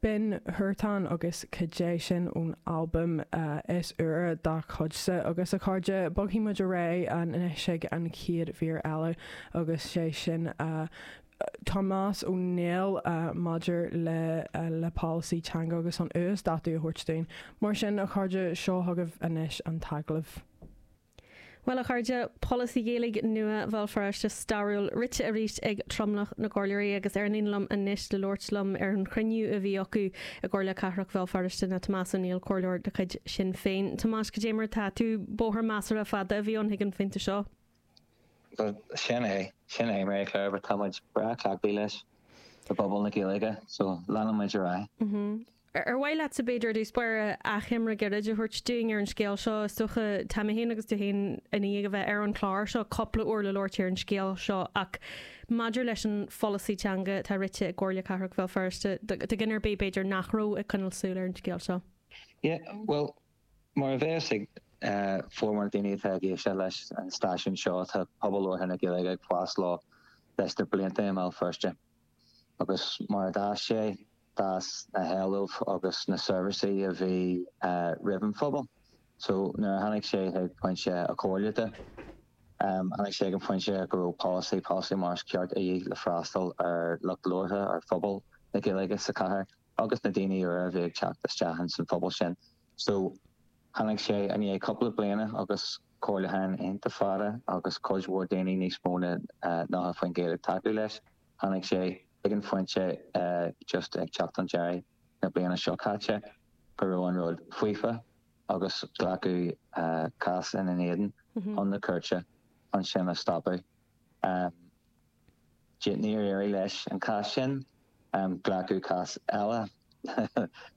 Binn, Huartan agus cuid é sin ón albam is úire dá gcuidse agus a chairde. Bogfaidh muid ar aghaidh anois ag an chéad mhír eile agus 'sé sin Tomás Ó Néill maidir le le polasaí teanga agus an t-uasdátú a thabhairt dúinn. Mar sin, a chairde, seo chugaibh anois an t-agallamh. Bhuel, a chairde, polasaí Gaeilge nua Bhéal Feirste stairiúil rite arís ag tromlach na gcomhairleoirí agus ar líne liom anois le labhairt liom ar an chruinniú a bhí acu i gComhairle Cathrach Bhéal Feirste ná Tomás Ó Néill, comhairleoir de chuid Shinn Féin. Tomás, cad é mar atá tú. Bóthar measartha fada a bhí ann chuig an phointe seo. Bhuel, sin é. Sin é, Marie Claire, but tá muid breá cleachtaí leis i bpobal na Gaeilge, so leanann muid ar aghaidh. Ar mhaith leatsa, b'fhéidir, i dtús báire, achoimre gairid a thabhairt dúinn ar an scéal seo? Is dócha, tá mé féin agus tú féin i ndiaidh a bheith ar an chlár seo cúpla uair le labhairt ar an scéal seo ach maidir leis an pholasaí teanga atá rite i gComhairle Cathrach Bhéal Feirste, do dhuine ar bith, b'fhéidir, nach raibh ag coinneáil súil ar an scéal seo. Yeah, bhuel, mar a bheas a fhios ag formhór na daoine atá ag éisteacht leis an stáisiún seo, tá pobal labhartha na Gaeilge ag fás leis leis na blianta i mBéal Feirste. agus mar a d'fhás sé, d'fhás na héilimh agus na seirbhísí a bhí roimh an phobal. So nuair a tháinig sé chuig pointe an chomhairle de, tháinig sé chuig an phointe go raibh polasaí, polasaí mar is, ceart de dhíth le freastal ar lucht labhartha, ar phobal na Gaeilge sa chathair. agus na daoine úra a bhí ag teacht isteach ins an phobal sin. So tháinig sé i ndiaidh cúpla bliana agus comhairliúcháin iontach fada agus cuid mhór daoine níos mó na nócha faoin gcéad ag tacú leis, tháinig sé chuig an phointe just ag teacht an deiridh na bliana seo caite go raibh an rud faofa agus glacadh cás ina éadan chun na cúirte chun sin a stopadh. Sea, níor éirigh leis an cás sin. Glacadh cás eile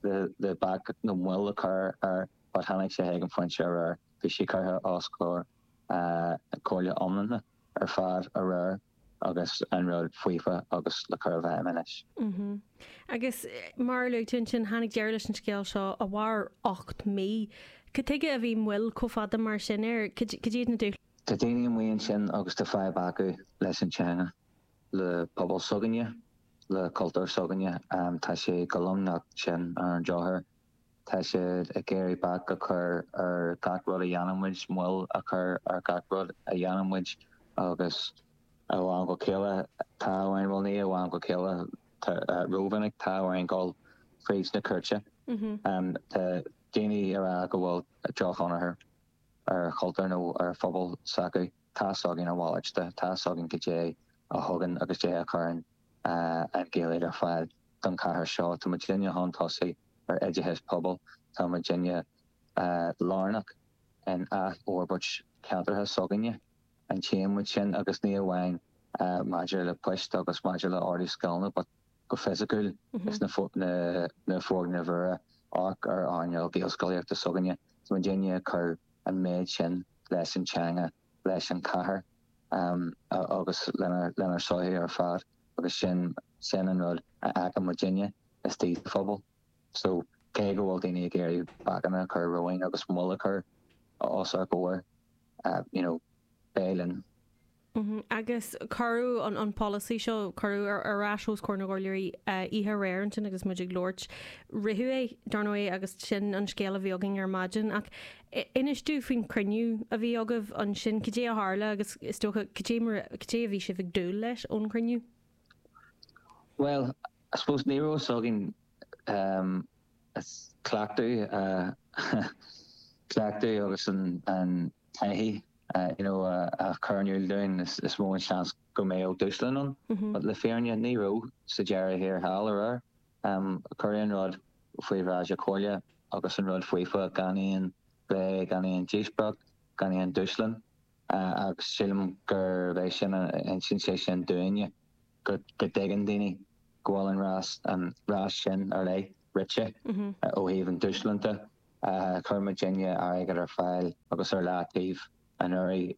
le bac nó moill a chur air but tháinig sé chuig an phointe aréir. Bhí sé curtha os comhair comhairle iomláine ar fad aréir agus an rud faofa agus le cur i bhfeidhm anois. Agus mar a luaigh tú ansin, tháinig deireadh leis an scéal seo a mhair ocht mí. Cad tuige a bhí moill chomh fada mar sin air? Cad é iad na dúshláin? Tá daoine amuigh ansin agus tá fadhb acu leis an teanga. le pobal s'againne, le cultúr s'againne. Tá sé go lomnocht sin ar an drochuair. Tá siad ag iarraidh bac a chur ar gach rud a dhéanann muid, moill a chur ar gach rud a dhéanann muid agus, ó am go chéile, tá orainn, bhuel, ní ó am go chéile, rómhinic, tá orainn gabháil fríd na cúirte. Tá daoine ag rá go bhfuil drochthionchar. ar chultúr nó ar phobal s'acu. Tá a fhios againn a mhalairt de, tá a fhios againn cad é a thugann agus cad é a chuireann an Ghaeilge ar fáil don chathair seo. Tá muidinne chun tosaigh ar oideachas pobail. Tá muidinne lárnach in athfhorbairt ceantracha s'againne. And tchíonn muid sin agus ní amháin maidir le poist agus maidir le orduithe scoileanna but. go fisiciúil is na foirgnimh mhóra amharc ar earnáil gaelscolaíochta s'againne. Is muidinne ag cur an méid sin leis an teanga, leis an chathair agus lenár sochaí ar fad agus sin an rud a fheiceann muidinne istigh sa phobal. So, cé go bhfuil daoine ag iarraidh bacanna a chur romhainn agus moill a chur os ár gcomhair, you know, beidh linn. Agus cuireadh an polasaí seo, cuireadh, ar ais os comhair na gcomhairleoirí oíche aréir ansin agus muid ag labhairt. Ritheadh é, dar ndóigh, agus sin an scéal a bhí againn ar maidin. Ach inis domh faoin chruinniú a bhí agaibh ansin. Cad é a tharla agus, is dócha, cad é mar, cad é a bhí sibh ag dúil leis ón chruinniú? Bhuel, I suppose ní raibh a fhios againn cleachtadh, cleachtadh agus an, an, taithí you know a chur in iúl dúinn is mó an seans go mbeadh dúshlán ann but le fírinne ní raibh sa deireadh thiar thall aréir cuireadh an rud faoi bhráid na comhairle agus an rud faofa gan aon phlé gan aon díospóireacht gan aon dúshlán agus sílim gurb é sin a insíonn sé sin dúinne go dtuigeann daoine go bhfuil an rás sin ar leith. rite ó thaobh an dúshláin de. Chuir muidinne airgead ar fáil agus ar leataobh anuraidh,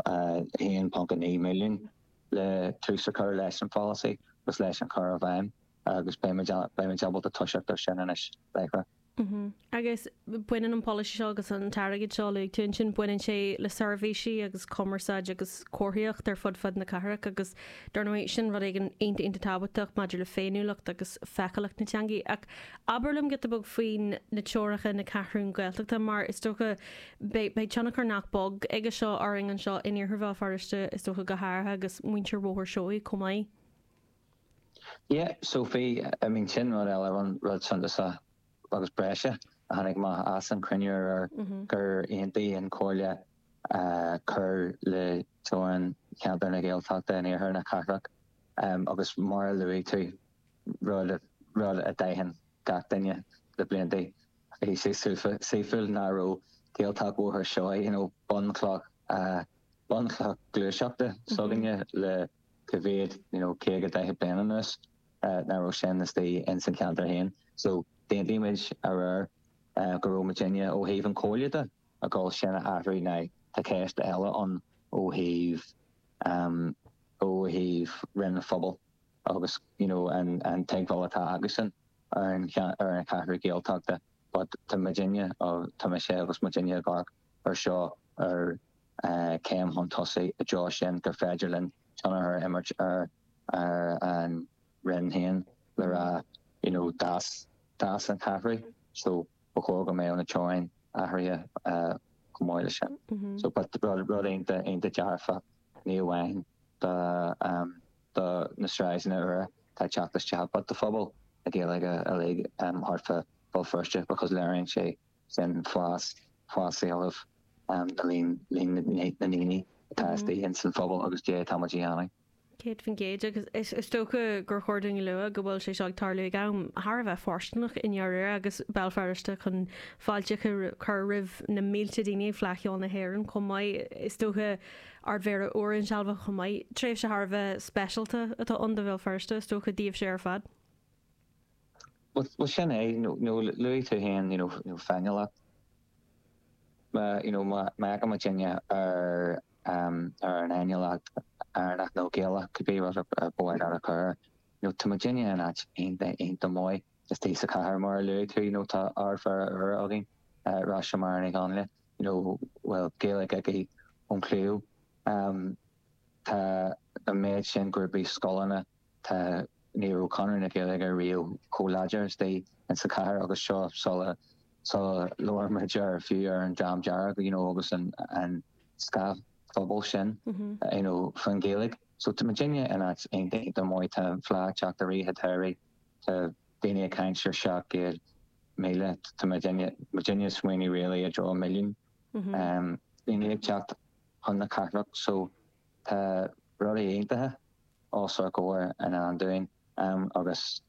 1.9 milliún, le tús a chur leis an pholasaí agus leis an chur i bhfeidhm agus beidh muid ábalta toiseacht ar sin anois, láithreach. Agus baineann an polasaí seo agus an t-airgead seo a luaigh tú ansin, baineann sé le seirbhísí agus cumarsáid agus comharthaíocht ar fud fad na cathrach agus dar ndóigh sin rud éigin iontach iontach tábhachtach maidir le féiniúlacht agus feiceálacht na teangaí. Ach abair liom giota beag faoi na teoracha na Ceathrún Gaeltachta mar is dócha beidh beidh tionchar nach beag aige seo orainn anseo in Iarthar Bhéal Feirste is dócha go háirithe agus muintir Bhóthar Seoighe chomh maith. Yeah, so bhí, I mean sin rud eile an rud suntasach. agus breise a tháinig amach as an chruinniú aréir gur aontaigh an Chomhairle cur le teorainn cheantar na Gaeltachta in iarthar na cathrach agus mar a luaigh tú, rud rud a d'aithin gach duine le blianta, bhí sé saoithiúil nach raibh Gaeltacht Bhóthar Seoighe, you know, bunchloch bunchloch gluaiseachta s'againne le cá mhéad, you know, 50, 40 bliain anuas. nach raibh sin istigh ins an cheantar féin so d'aontaigh muid aréir go raibh muidinne ó thaobh an chomhairle de a dhul sin a athrú now tá ceist eile ann ó thaobh ehm ó thaobh Roinn an Phobail agus you know an an tuigbheáil atá acusan ar an ar an Cheathrú Ghaeltachta but tá muidinne tá mise agus muidinne ag amharc. ar seo mar chéim chun tosaigh i dtreo sin gur féidir linn tionchar a imirt ar ar an Roinn féin le rá you know d'fhás d'fhás an cheathrú so ba chóir go mbeadh na teorainneacha athraithe chomh maith leis sin so but rud rud iontach iontach dearfach ní amháin do do na sráideanna úra atá ag teacht isteach but do phobal na Gaeilge uilig thart fá Bhéal Feirste because léiríonn sé sin fás, fás éilimh le líon, líon na ndaoine atá istigh ins an phobal agus cad é atá muid a dhéanamh. 100% agus is is dócha gur chóir dúinn a lua go bhfuil sé seo ag tarlú ag am thar a bheith fóirsteanach i ndáiríre agus Béal Feirste chun fáilte a chur roimh na mílte daoine ag Fleadh Cheoil na hÉireann chomh maith. Is dócha Ardmhéara úr insealbhaithe chomh maith. Tréimhse thar a bheith speisialta atá ann do Bhéal Feirste is dócha, daoibhse ar fad. Bhuel sin é, nó luaigh tú féin you know féiniúlacht, má you know má amharcann muidinne ar ar an fhéiniúlacht Éireannach nó Gaelach cibé rud ar mhaith leat a chur air, you know tá muidinne in áit iontach maith istigh sa chathair mar a luaigh tú you know tá Ardmhéara úr againn, Róis-Máire Ní Dhonnghaile you know a bhfuil Gaeilge aici ón chliabhán, tá an méid sin grúpaí, scoileanna. Tá ní raibh Conradh na Gaeilge riamh chomh láidir istigh insa chathair agus seo sula sula labhair muid ar fiú ar an Dream Dearg you know agus an an feachtas pobail sin you know fán Ghaeilge. So tá muidinne in áit iontach maith tá fleá ag teacht i rith an tsamhraidh tá daoine ag caint ar 700,000 tá muidinne muidinne ag smaoineamh really i dtreo milliún duine ag teacht chun na cathrach so Tá rudaí iontacha os ár gcomhair i ndán dúinn agus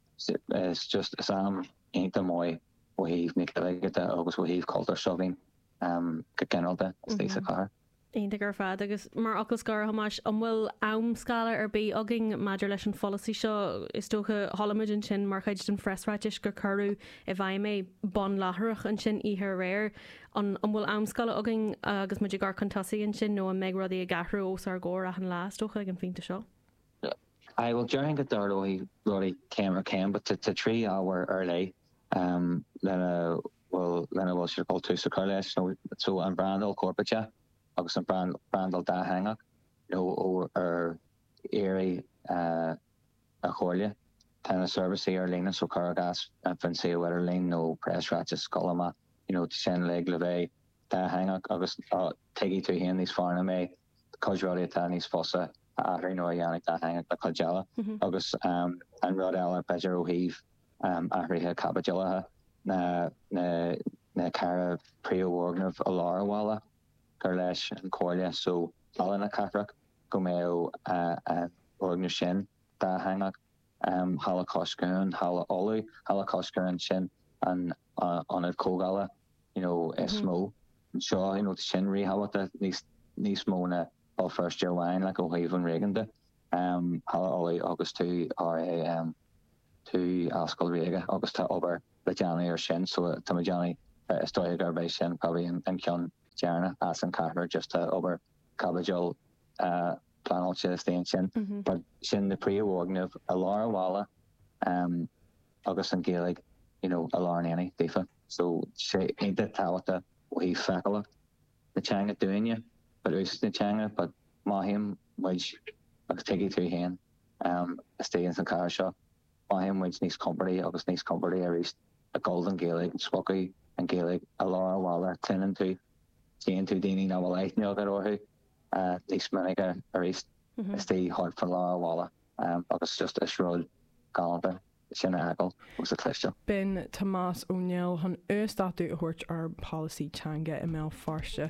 is just is am iontach maith ó thaobh na Gaeilge de agus ó thaobh cultúr s'againn go ginearálta istigh sa chathair. Iontach ar fad. Agus mar fhocal scoir, a Thomáis, an bhfuil amscála ar bith againn maidir leis an pholasaí seo? Is dócha, chuala muid ansin mar chuid den phreasráitis gur cuireadh i bhfeidhm é, ar bhonn láithreach ansin oíche aréir. An bhfuil amscála againn agus muid ag amharc chun tosaigh ansin nó an mbeidh rudaí ag athrú os ár gcomhair achan lá, is dócha, ag an phointe seo? Sea, bhuel, déarfainn go dtarlóidh rudaí céim ar chéim. Tá trí ábhar ar leith lena bhfuil siad ag dul tús a chur leis, so, an bhrandáil chorparáideach agus an bhrandáil dátheangach, nó ar aghaidh, An Chomhairle, tá na seirbhísí ar líne so cuir i gcás an suíomh idirlín nó preasráiteas ag gabháil amach you know tá sin uilig le bheith dátheangach agus tuigfidh tú féin níos fearr ná mé cuid rudaí atá níos fusa a athrú nó a dhéanamh dátheangach ná cuid eile agus an rud eile b'fhéidir ó thaobh athruithe caipitil de na na na ceithre príomhfhoirgneamh i lár an bhaile gur leis an Chomhairle so Halla na Cathrach. go mbeadh an foirgneamh sin dátheangach, Halla Cois Cuain, an Halla Uladh, Halla Cois Cuain, sin an ionad comhdhála you know is mó anseo you know tá sin ríthábhachtach níos níos mó ná Béal Feirste amháin like ó thaobh an réigiúin de, Halla Uladh agus tú RA tú Ollscoil Ríoga agus tá obair le déanamh ar sin so tá muid ag déanamh is dóigh gurb é sin probably an ceann deireanach as an ceathair just tá obair caipitil pleanáilte istigh ansin. But sin na príomhfhoirgnimh i lár an bhaile agus an Ghaeilge you know i lár an aonaigh daofa. So tá sé iontach tábhachtach ó thaobh feiceálacht na teanga dúinne but úsáid na teanga but mothaíonn muid agus tuigfidh tú féin istigh sa chathair seo. Mothaíonn muid níos compordaí agus níos compordaí arís ag gabháil don Ghaeilge, sa phóca Gaeilge i lár an bhaile, cluineann tú, tchíonn tú daoine nach bhfuil aithne agat orthu níos minice arís istigh thart fá lár an bhaile agus just is rud galánta sin a fheiceáil agus a chloisteáil. B'in Tomás Ó Néill chun uasdátú a thabhairt ar an bpolasaí teanga i mBéal Feirste.